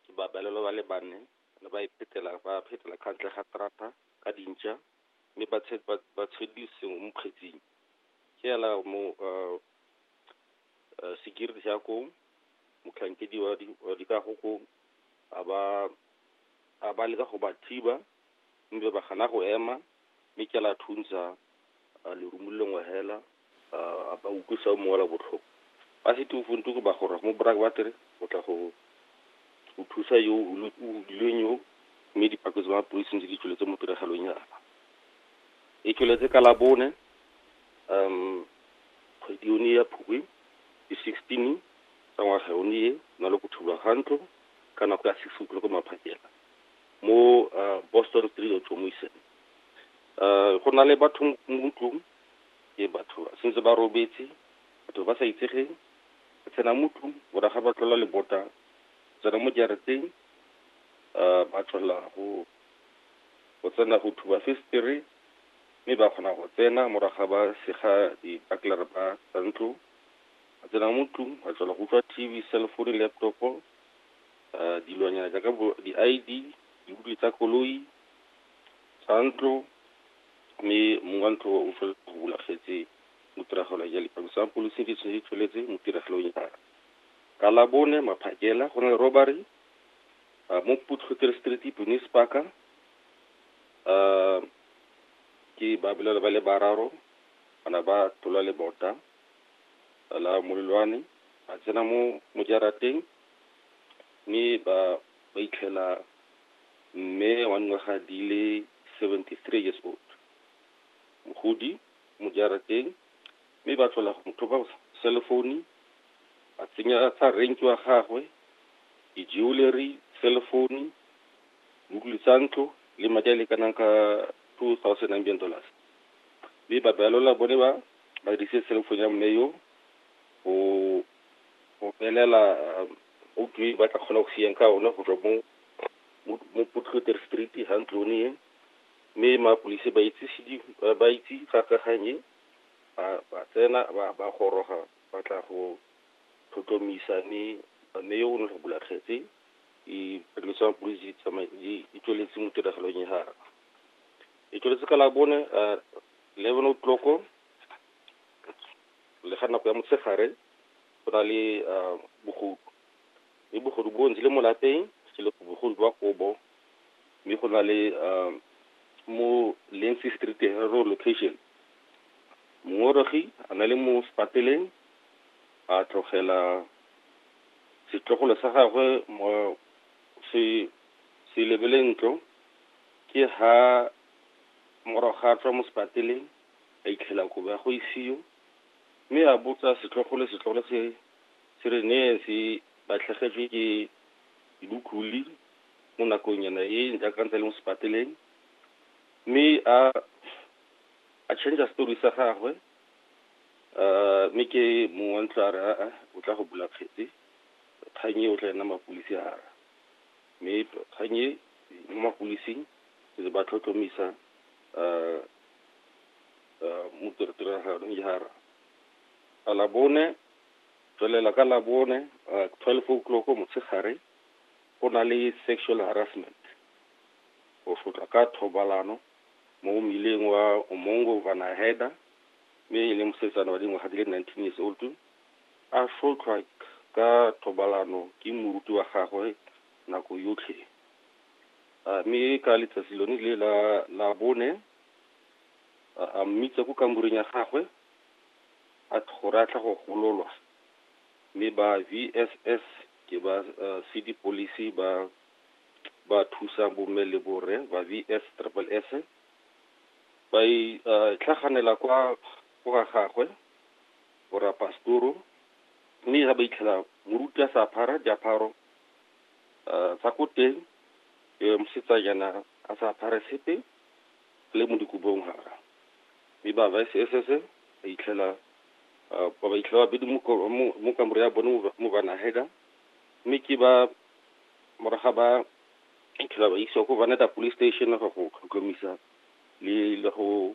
Ke babalelwa ba le bane ba ne ba iphetela ba phetela ka ntle ga terata ka dintša mme ba ba tshedile sengwe mo kgetsing. Ke ela mo security ya koo, motlhankedi wa dikago koo a ba leka go ba thiba Mme ba gana go ema, mme ke la thuntsha lerumo le lengwe hela, a ba utlwisa o mongwe la botlhoko. Ba sete o fonte ko ba gorag mo brak ba tere o tla go go thusa yo o hudilweng yo, mme dipako tsa mapodisi ntse di tsweletse mo tiragalong yana. E tsweletse ka la bone kgwedi yone ya Phukwi di sixteen tsa ngwaga yone e, go na le go thulwa ga ntlo ka nako ya six o'clock maphakela. mo uh, boston street otlhomoisen um go na le batho mo tlong ke batho sentse ba robetse batho ba sa itsegeng ba tsena mo tlong boraga ba tlola lebota tsena mo jarateng um ba tlola go go tsena go thuba festere mme ba kgona go tsena moraga ba sega dibaklere ba tsa ntlo ba tsena mo tlong ba tlola go utlwa tv cellphone laptopo dilonyana jaaka bo di-I_D, dibupi tsa koloi, tsa ntlo, mme mong wa ntlo o tshwanetse go bula kgetse mo tiragalo ya lipalisa ya polisi di tshwanetse di tsweletse mo tiragalong ya ka labone maphakela go na le robbery mo putlhotere street penis parka ke ba bolelwa ba le bararo bana ba tlola le bota la molelwane ba tsena mo mojarateng mme ba ba itlhela mme wa dingwaga di le 73 years old, mogodi mo jarateng mme ba tlhola go mo thopa selefoune, ba tsenya tsa rank wa gagwe, di-jewellery, selefoune, dibukulu tsa ntlo le madi a lekanang ka 2,000 Namibian dollars. Mme ba balola bone ba ba dirisitse selefoune ya mme yo go go belela outo e ba tla kgona go siyang ka one go tswa mo mo Potloter Street ha ntlone e mme mapodisi ba itse ba itse ka kaganye ba ba tsena ba ba goroga ba tla go tlhotlhomisa mme mme yo o ne go bula kgetse e pholisi ya mapodisi tsamaye e tsweletse mo tiragalong ya gago e tsweletse ka la bone eleven o'clock Le ga nako ya motshegare go na le bogodu, mme bogodu bo ntse le mo lapeng ke le bogodu jwa kobo, mme go na le mo Lindsay Street Herero location mongongoregi a na le mo sepateleng a tlogela setlogolo sa gagwe mo se se lebeleng ntlo ke ha morago ga tswa mo sepateleng. a itlhela kobo ya go isio, mme a botsa setlhogo le setlhogo se se re neyeng se latlhegetswe ke dibukluli mo nakongnyana e jaaka ntse le mo sepateleng, mme a a change story sa gagwe mme ke mong wa ntlo a re a o tla go bula kgetse kgang e o tla ena mapodisi a ra mme kgang e mo mapolising re ba tlhotlhomisa . uh, mo tiraganong jara a labone tswelela ka labone uh, twelve o'clock motshegare go na le sexual harassment go tlhotlwa ka thobalano mo mmileng wa omongo vanaheda mme e le mosetsana wa dingwaga di le nineteen years old a sotlhwa ka thobalano ke moruti wa gagwe nako yotlhe A mme ka letsatsi lone le la la bone a a mmitsa ko kamoreng ya gagwe a th- gore a tla go gololwa mme ba VSS ke ba uh, city police ba ba thusa bomme le borre ba VS triple S ba e uh, tlhaganela kwa go ga gagwe borapastoro mme ga ba itlhela moruti a sa phara diaparo tsa ko teng e mosetsanyana a sa apare sepe le mo dikobong gara mme ba ba SSS ba itlhela ba ba itlhela ba bedi mo kamore ya bone mo bana heda mme ke ba moraga ba itlhela ba isiwa ko Vaneta police station go tlhotlhomisa le le go